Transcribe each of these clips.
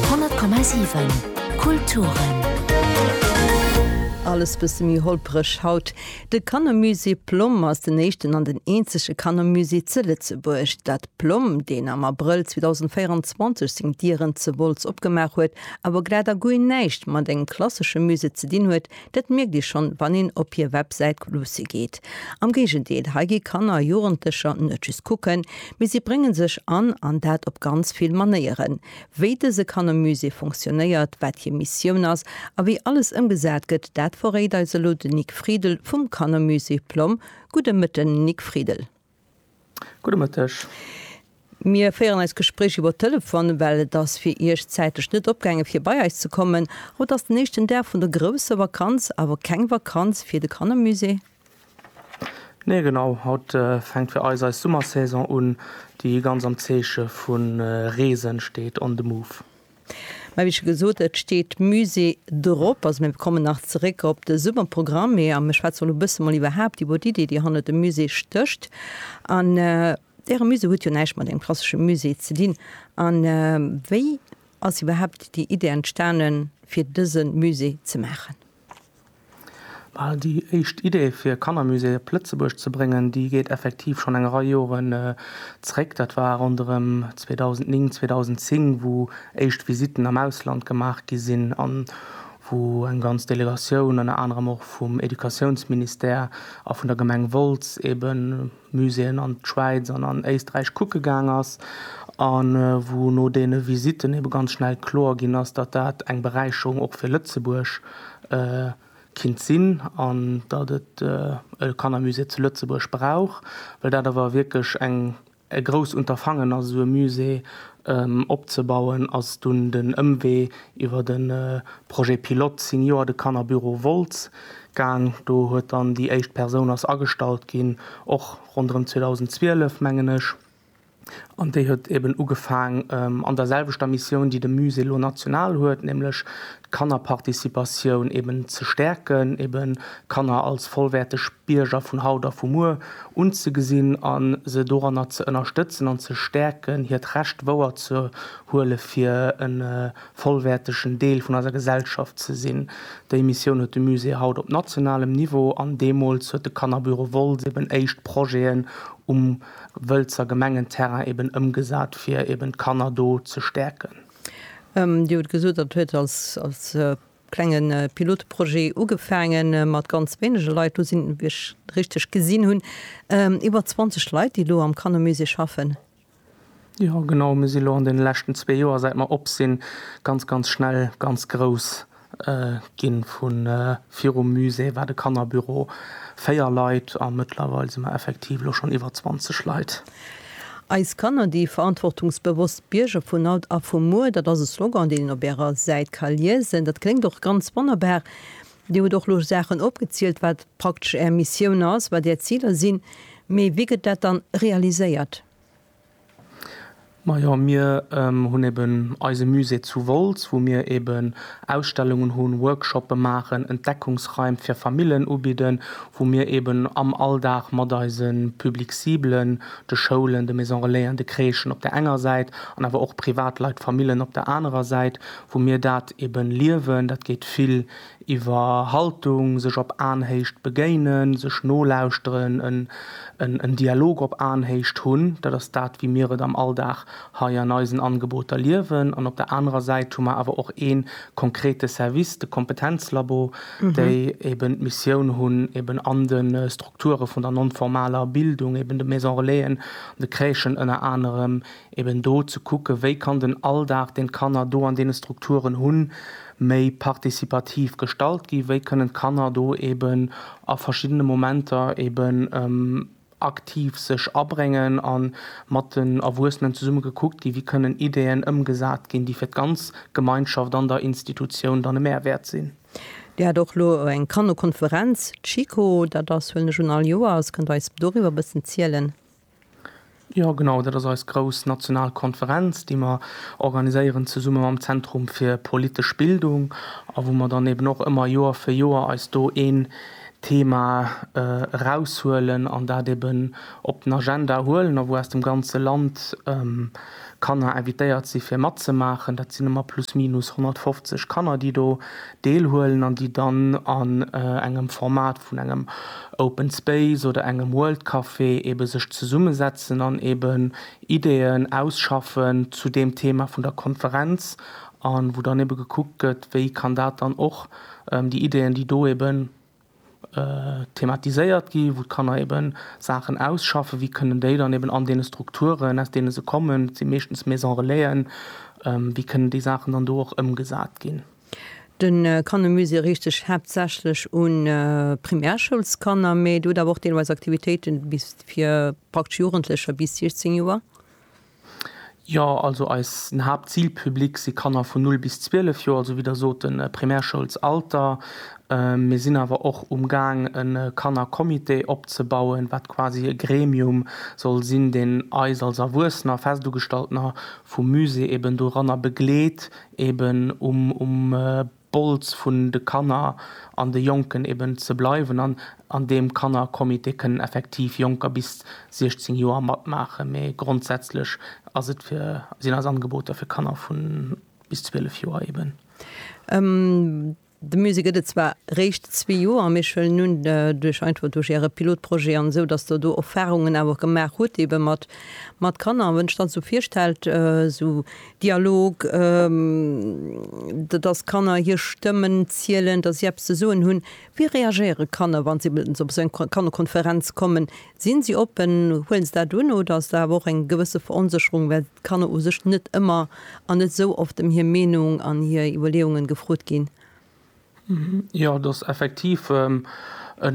100,7 Kulturen. Alles bësse méi holpereg haut. De Kannermusée Plomm ass den éischten an den eenzege Kannermusée ze Lëtzebuerg. D'Ad Plomm, deen am Abrëll 2024 seng Dieren ze Wolz opgemaach huet, awer glat a guer näischt mat engem klassesche Musée ze dinn huet, Dat mierkt ee schonn, wann een op hir Websäit luusse geet. Am Géigendeel, hei gi Kanner a Jugendlecher net just kucken, mee si brénge sech an, an dat op ganz vill Manéieren. Wéi dëse Kannermusée funktionéiert, wat hir Missioun ass a wéi alles ëmgesat gëtt, dat verréit eis elo den Nic Friedel vum Kannermusée Plomm. Gudde Mëtten, Nic Friedel. Gudde Mëtteg. Mir féieren eist Gespréich iwwer Telefon, well et ass fir Iech zäitlech net opgaangen, fir bei eis ze kommen. Haut ass den éischten Dag vun der grousser Vakanz, awer keng Vakanz fir de Kannermusée. Nee, genau. Haut fänkt fir eis eis Summersaison un, déi ganz am Zeeche vu Reesen steet. On the Move. Mä wéi scho gesot, et steet Musée drop. Also mir kommen nach zeréck op de Summerprogramm. Mee a mir schwätze elo e bësse mol iwwerhaapt iwwer d'Idee, déi hannert dem Musée stécht. An Äre Musée huet jo näischt mat engem klassesche Musée ze dinn. A wéi ass iwwerhaapt déi Idee entstanen, fir dëse Musée ze maachen? Well déi éischt Idee fir Kannermusée op Lëtzebuerg ze bréngen, déi geet effektiv schonn eng Rei Joren zréck. Dat war ronderëm 2009, 2010, wou éischt Visitten am Ausland gemaach gi sinn an wou eng ganz Delegatioun, ënner anerem och vum Educatiounsministère a vun der Gemeng Wolz, eeben Muséeën an d'Schwäiz an an Éisträich kucke gaang ass, a wou no deene Visitten ebe ganz schnell kloer ginn ass, datt dat eng Beräicherung och fir Lëtzebuerg kinnt sinn an datt et e Kannermusée zu Lëtzebuerg brauch, well dat awer wierklech e grousst Unterfangen ass, esou e Musée Opzebauen ass dunn den Ëmwee iwwer de Projet pilote Senior de Kannerbüro Wolz gaang. Do huet dann déi éischt Persoun ass agestallt ginn, och ronderëm 2012 mengen ech, an déi huet eben ugefaang an der selwechter Missioun déi de Musée lo national huet, nämlech d'Kannerparticipatioun eben ze stäerken, eben d'Kanner als vollwäerteg Bierger vun haut a vu muer unzegesinn a se doranner ze ënnerstëtzen an ze stäerken, hiert Recht wouerzehuele fir e vollwäertegen Deel vun eiser Gesellschaft ze sinn. Déi Missioun huet de Musée haut op nationalem Niveau an deemools huet de Kannerbüro Woltz eben éischt Projeten um Wëlzer Gemengenterrain eben ëmgesat, fir eben d'Kanner do ze stäerken. Dir hutt gesot, dat huet als klenge Pilotprojet ugefaange mat ganz wéinege Leit, elo sinn, wa ech richteg gesinn hunn, iwwer 20 Leit, déi elo am Kannermusée schaffen. Jo, genau. Mir si elo an deene leschten zwee Joer, säit mer op sinn, ganz, ganz schnell ganz grouss Ginn vu virum Musée war de Kannerbüro 4 Leit a mëttlerweil si mer effektiv elo schonn iwwer 20 Leit. Eis Kanner, déi verantwortungsbewosst Bierger vun haut a vu muer, dat ass e Slogan, deen een op Ärer Säit ka liesen. Dat kléngt och ganz wonnerbar. Dir hutt och elo Saachen opgezielt, wat praktesch Är Missioun ass, wat Är Ziler sinn. Mee wéi gëtt dat dann realiséiert? Majo mir hunn eben eise Musée zu Wolz wou mir eben Ausstellungen hunn, Workshoppe maachen, Entdeckungsraim fir Famillen ubidden, wou mir eben am Alldag mat eise Public ciblen, de Schoulen, de Maison Relaisen, de Crèchen op der enger Säit an awer och Privatleit, Famillen op der anerer Säit, wou mir dat eben liewen. Dat geet vill iwwer Haltung, sech op Aenhéicht begéinen, sech nolauschteren, en Dialog op Aenhéicht hunn, dat ass dat wéi mir et am Alldag hei an eisen Angeboter liewen, an op der anerer Säit hu mer awer och ee konkrete Service, de Kompetenzlabo, déi eben d'Missioun hunn, eben an de Strukture vun der non-formaler Bildung, eben de Maison-relaisen, de Crèchen ënner anerem, eben do ze kucken, wéi kann den Alldag, deen d'Kanner do an deene Strukturen hunn, méi participativ gestalt ginn, wéi kënnen d'Kanner do eben a verschiddene Momenter eben aktiv sech abréngen a mat den Erwuessenen zesumme gekuckt ginn, wéi kënnen Ideeën ëmgesat ginn, déi fir d'ganz Gemeinschaft an der Institutioun dann e Mehrwert sinn. Dir hat och elo eng Kannerkonferenz, d'Schiko, dat ass, huelen ech un, all Joers. Kënnt Der eis doriwwer e bëssen zielen? Jo genau, dat ass eis grouss national Konferenz, déi mer organiséieren zesumme mam Zentrum fir politesch Bildung a wou mer dann eben och ëmmer Joer fir Joer eis do een Thema eraushuelen an dat eben op den Agenda huelen a wou aus dem ganze Land Kanner invitéiert si fir matzemaachen. Dat sinn ëmmer plus minus 150 Kanner, déi do deelhuelen an déi dann an engem Format vun engem Open Space oder engem World Café eebe sech zesummesetzen an eeben Ideeën ausschaffen zu deem Thema vun der Konferenz a wou dann eebe gekuckt gëtt, wéi kann dat dann och déi Ideeën, déi do eeben. thematiséiert gi wou d'Kanner eben Saachen ausschaffen, wéi kënnen déi dann eben an deene Strukturen aus deene se kommen, et si meeschtens Maison Relaisen, wéi kënnen déi Saachen dann do och ëmgesat ginn. De Kannermusée riicht sech haaptsächlech u Primärschoulskanner, mee et huet awer och deelweis Aktivitéiten fir praktesch Jugendlecher bis 16 Joer. Jo, also eisen Haaptzilpublic si Kanner vun 0 bis 12 Joer, also wéi Der sot de Primärschoulsalter. Mir sinn awer och umgaang e Kannercomité opzebauen, wat quasi e Gremium soll sinn, deen eis als Erwuessener, Festugestaltener vum Musée, eben doranner begleet, eben um Bols vun de Kanner an de Jonken eben ze bleiwen an an deem Kannercomité kënnen effektiv Jonker bis 16 Joer matmaachen, mä grondsätzlech ass et fir, sinn eis Angeboter fir Kanner vu bis 12 Joer eben. De Musée gëtt et zwar réischt zwee Joer, mä ech huelen un, duerch einfach duerch Äre Pilotprojet an esou, datt Der do Erfahrungen awer gemaach hutt ebe mat Kanner. Wann ech dann esou virstellt, esou Dialog, dass Kanner hir Stëmmen zielen, dass si eppes ze soen hunn. Wéi reagéiere Kanner, wa se op esou eng Kannerkonferenz kommen? Sinn si oppen, huelen se dat un oder ass do awer och eng gewësse Veronsécherung, well d'Kanner u sech net ëmmer an net esou oft ëm hir Meenung an hir Iwwerleeungen gefrot ginn? Jo, et ass effektiv e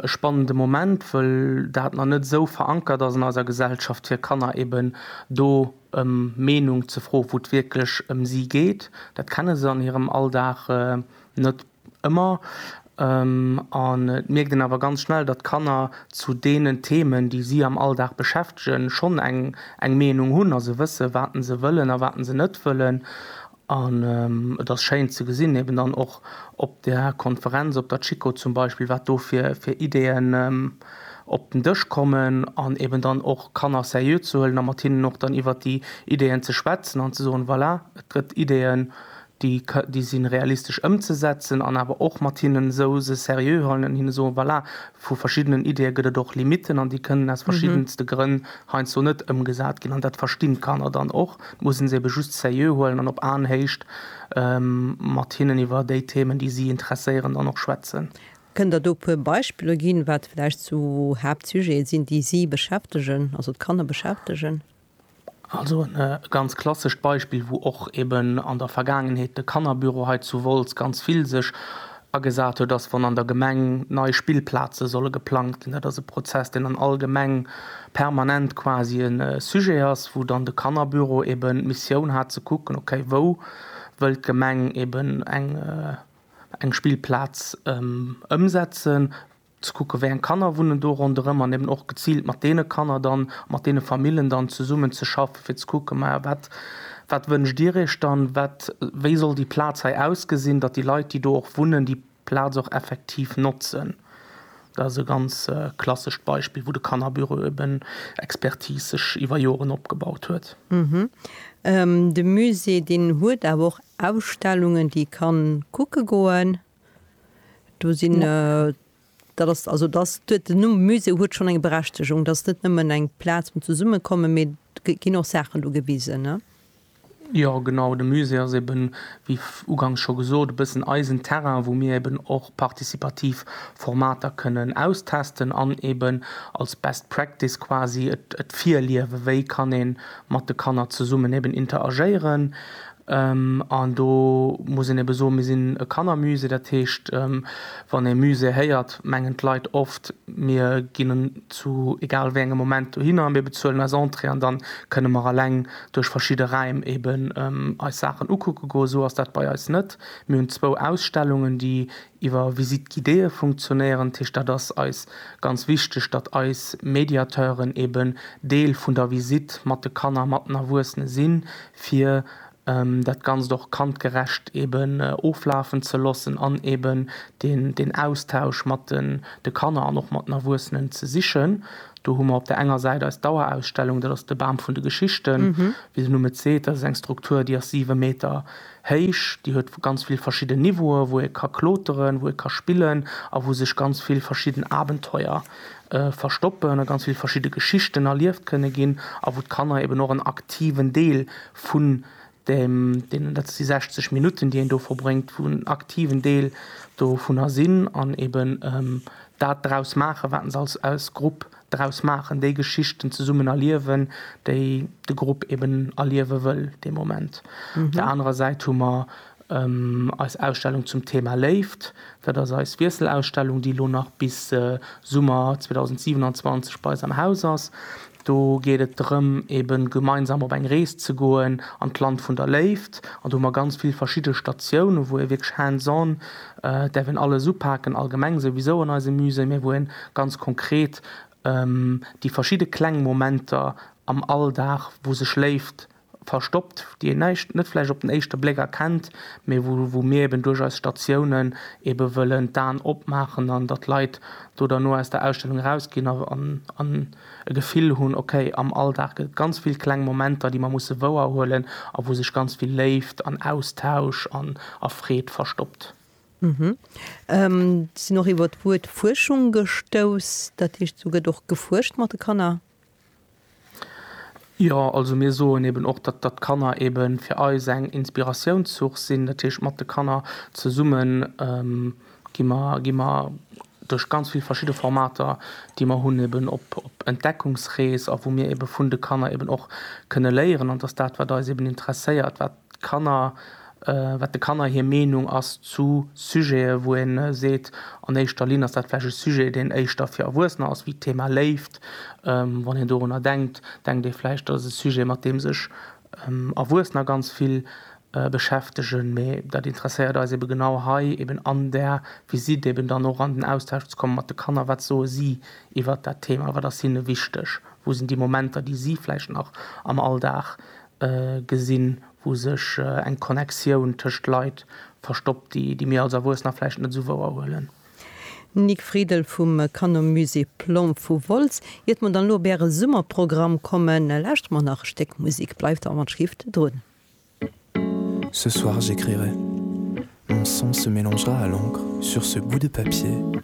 spannende Moment, wëll dat nach net esou verankert ass an eiser Gesellschaft, fir Kanner eben do ëm Meenung ze froen, wou et wierklech ëm si geet. Dat kenne se an hirem Alldag net ëmmer. An et mierkt een awer ganz schnell, datt d'Kanner zu deenen Themen, déi si am Alldag beschäftegen, schonn eng Meenung hunn a se wëssen, wat se wëllen a wat se net wëllen. An et ass schéin ze gesinn, eben dann och op där Konferenz, op der Chiko zum Beispill, wat do fir Ideeën op den Dësch kommen an eben dann och Kanner seriö ze huelen a mat hinnen och dann iwwert déi Ideeën ze schwätzen an ze soen, voilà, et gëtt Ideeën, déi si realistesch ëmzesetzen an awer och mat hinnen esou se seriö huelen an hinne soen, voilà, Vu verschiddenen Ideeë gëtt et och Limitten an déi kënnen aus verschiddenste Grënn heiansdo net ëmgesat ginn. An dat verstinn d'Kanner dann och. Et muss een se ebe just seriö huelen an op Aenhéicht mat hinnen iwwer déi Themen, déi si interesséieren, dann och schwätzen. Kënnt Der do e puer Beispiller ginn, wat vläicht sou Haaptsujete sinn, déi si beschäftegen, also d'Kanner beschäftegen? Also e ganz klassescht Beispill, wou och eben an der Vergaangenheet de Kannerbüro hei zu Wolz ganz vill sech agesat huet, ass, wann an der Gemeng nei Spillplaze solle geplangt ginn. Dat ass e Prozess, deen an all Gemeng permanent quasi e Sujet ass, wou dann de Kannerbüro eben d'Missioun hat ze kucken, okay, wou wëllt d'Gemeng eben eng Spillplaz ëmsetzen, ze kucken, wéi eng Kanner wunnen do ronderëm an eben och geziilt mat deene Kanner dann, mat deene Famillen dann zesummen ze schaffen, fir ze kucken, mä wat, wat wënscht Dir Iech dann, wat, wéi soll déi Plaz hei ausgesinn, datt déi Leit, déi do och wunnen, déi Plaz och effektiv notzen. Dat ass e ganz klassescht Beispill, wou de Kannerbüro eben Expertise sech iwwer Joren opgebaut huet. De Musée, deen huet awer och Ausstellungen, déi ee ka kucke goen. Do sinn, dat ass, also dass huet den Numm Musée huet schonn eng Berechtegung. Dat ass net nëmmen eng Plaz vum Zesummekommen, mee et ginn och Saachen do gewisen, ne? Jo, genau. De Musée ass eeben, wéi ugangs scho gesot, e bëssen eisen Terrain, wou mir eeben och participativ Formater kënnen austesten an eeben als best practice quasi et virliewen, wéi kann ee mat de Kanner zesummen eeben interagéieren. An do muss een ebe soen, mir sinn e Kannermusée. Dat heescht, wann ee Musée héiert, mengen d'Leit oft, mir ginn zu egal wéi engem Moment dohinner, mir bezuelen eis Entrée an dann kënne mer eleng duerch verschidde Räim eben eis Saachen ukucke goen. Esou ass dat bei eis net. Mir hunn zwou Ausstellungen, déi iwwer Visites guidées funktionéieren. Dat heescht, dat ass eis ganz wichteg, datt eis Mediateuren eben Deel vun der Visite mat de Kanner, mat den Erwuessene sinn, fir dat Ganzt och kandgerecht eben oflafen ze loossen an eben deen Austausch mat de Kanner an och mat den Erwuessenen ze sichen. Do hu mer op der enger Säit eis Dauerausstellung, dat ass de Bam vun de Geschichten. Wéi den Numm et seet, dat ass eng Struktur, déi ass siwe Meter héich, déi huet ganz vill verschidden Niveaue wou ee ka kloteren, wou ee ka spillen a wou sech ganz vill verschidden Abenteuer verstoppen a ganz vill verschidde Geschichten erlieft kënne ginn a wou d'Kanner eben och en aktiven Deel vun dem, deenen, dat si 60 Minutten, déi een do verbréngt, wou en aktiven Deel dovunner sinn an eben dat draus maachen, wat se als, als Grupp draus maachen, déi Geschichten zesummen erliewen, déi de Grupp eben erliewe wëll dee Moment. Op der anerer Säit hu mer Eis Ausstellung zum Thema Léift, dat ass eis Wiesselausstellung, déi elo nach bis Summer 2027 bei eis am Haus ass. Do geet et drëm, ebe gemeinsam op eng Rees ze goen an d'Land vun der Léift. An do hu mer ganz vill verschidde Statiounen, wou ee wierklech hands on, et däerf een alles upaken, allgemeng souwisou an eise Musée, mä wou een ganz konkret déi verschidde kleng Momenter am Alldag, wou sech Léift, verstoppt, déi een näischt net vläicht op den éischte Bléck erkennt, mee wou wou mir eben duerch eis Statiounen ebe wëllen d'Aen opmaachen an datt d'Leit do derno aus der Ausstellung erausginn a an e Gefill hunn, okay, am Alldag gëtt et ganz vill kleng Momenter, déi mer musse wouerhuelen a wou sech ganz vill Léift an Austausch an a Freed verstoppt. Sinn och iwwer d'Wuert Fuerschung gestouss, dat heescht, do gëtt och gefuerscht mat de Kanner? Jo, also mir soen eben och, datt datt d'Kanner ebe fir eis eng Inspiratiounssource sinn. Dat heescht, mat de Kanner zesumme gi mer gi mer duerch ganz vill verschidde Formater, déi mer hunn, eben op op Entdeckungsrees a wou mir ebe vun de Kanner eben och kënne léieren. An datt dat, wat eis eben interesséiert, wat D'Kanner, wat de Kanner hir Meenung ass zu Sujete wou ee seet, an éischter Linn ass dat vläicht e Sujet deen éischter fir Erwuessener ass, wéi d'Thema Léift. Wann een dorunner denkt, denkt ee vläicht dat ass e Sujet mat deem sech Erwuessener ganz vill beschäftegen, mee dat interesséiert eis ebe genau hei eben an där Visitt eben dann och an den Austausch ze komme mat de Kanner, wat soe si iwwert dat Thema, wat ass hinne wichteg, wou sinn déi Momenter déi si vläicht nach am Alldag gesinn, wou sech eng Connectioun tëscht Leit verstoppt, déi déi mir als Erwuessener vläicht net esou wouer huelen. Nic Friedel vum Canon Musée Plomb vu Wolz, Iert mer dann elo op Äre Summerprogramm kommen, lauschtere mer nach e Stéck Musek. Bleift an der Schrift drun. Ce soir j'écrirai, mon sang se mélangera à l'encre sur ce bout de papier.